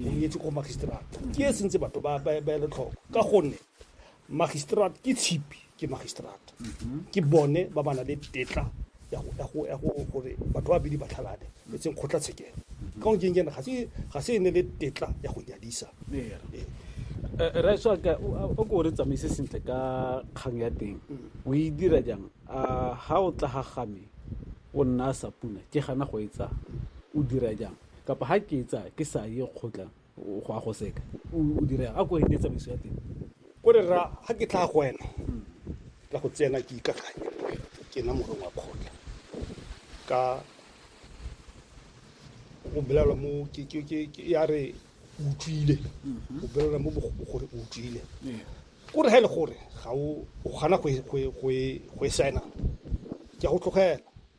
o nyetse ko magistrata ke e sentse batho ba ba- ba ele tlhoko ka gonne magistrata ke tshipi ke magistrata ke bone ba ba na le tetla ya go- ya go- ya go- gore batho ba bedi ba tlhalane e tseng kgotlatshekelo ka go nkeng kene ga se- ga se e ne le tetla ya go nyadisa Ee. raetswaka o ko o re tsamaise sentle ka kgang ya teng o e dira jang a ga o tla ga game o nna a sa puna ke gana go e tsaya o dira jang kapa ha ke etsa ke sa ye kgotla go a go seka o dira a ko ete tsamaiso ya teng ko re ra ha ke tla go wena ka go tsena ke ikakanya le wena ke na morong wa kgotla ka o bolela mo ke ke ke ya re utlwile o bolela mo gore utlwile ko re ha ile gore ga o gana go go go e saena ke go tlogela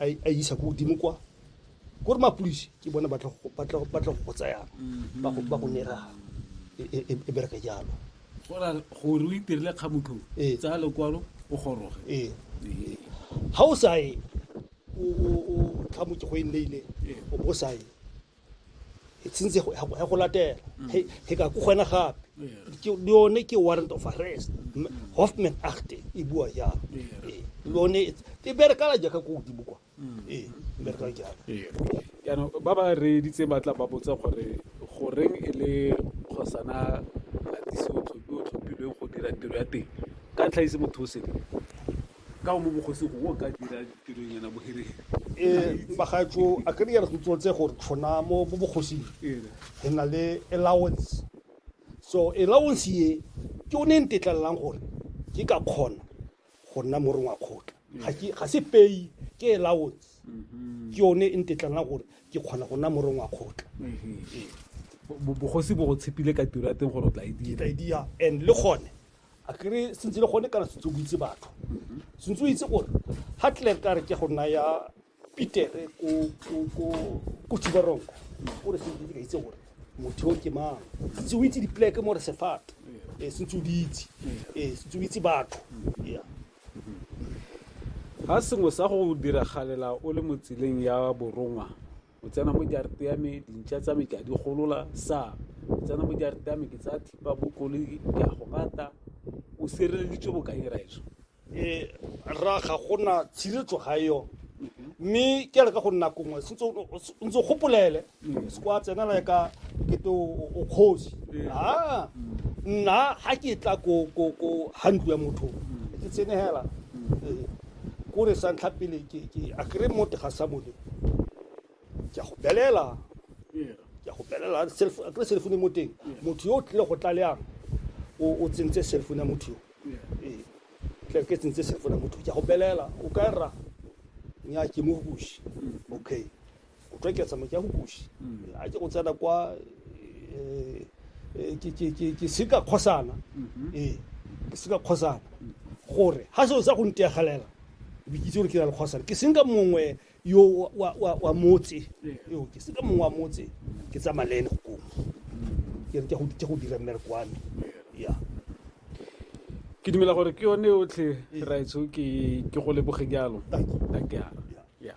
a isa ko godimo kwa ko re mapodisi ke bone ba tla go go tsayang mhm. ba go nera e, e, e, e bereke jalo gore o itirile kgamotho tsaya lekwalo o goroge ee ga o sa ye kgamoke go e nneile o bo sa ye since ya go latela he ka ko gona gape yone ke warrant of arrest hoffman achte e bua jalo yone e berekala jaaka ko godimo kwa ee e berekala jalo jaanong ba ba reeditse ba tla ba botsa gore goreng e le kgosana gatise o tlhophilweng go dira tiro ya teng ka ntlha ise motho o sele Ka o mo bogosi go o ka dira tirong yana boherere. E bagatsho a ka dira go tsotse gore tshona mo mo bogosing re na le allowance so allowance ye ke o ne ntetlelelang gore ke ka kgona go nna morong wa kgotla ga ke ga se pay ke allowance mm-hmm. ke yone e ntetlelelang gore ke kgona go nna morong wa kgotla mm-hmm. bogosi bo go tshepile ka tiro ya teng gore o tla e dira e and le gone a kere sentse le gone kana sentse o itse batho sentse o itse gore ga clerk a re ke go naya pitere ko tubaronko o re sentse ka itse gore motho o ke mang sentse o itse dipleke mo re sefate eh, sentse o di itse eh, sentse o itse batho yeah ga sengwe sa go diragalela o le mo tseleng ya borongwa o tsena mo jarete ya me dintšha tsa me ke a di golola sa o tsena mo jarete ya me ke tsaya thipa bo koloi ke a go bata o sireleditswe bokae raetso e ra ga gona tshiretso ga yo mme ke re ka go nna kongwe sentse o ntse gopolele se kwa tsenela ka kete o kgosi a nna ga ke tla ko ko ko hantlo ya motho ke tsenegela kore sa ntlha pele ke ke a kere mo tega sa bone ke a go belela ke a go belela a kere cell phone mo teng motho yo o tlile go tlaleang o tsentse cell phone ya motho yo ee tle ke tsentse cell phone ya motho ke a go belela o ka rra nya ke mo bushi okay O tlo eketsa moke ya go kuši. A ke go tsena kwa eh, eh, ke- ke- ke- ke se ka kgosana ee ke se ka kgosana gore ga seo sa go ntegelela be ke itse gore ke na le kgosana ke senka mongwe yo wa- wa- wa wa motse yo ke senka mongwe wa motse ke tsamaya le ene go komo ke re ke go- ke go dira mmereko wa me ya ke dumela gore ke yone yotlhe raetsho ke ke go leboge jalo Thank you. Thank you. Yeah.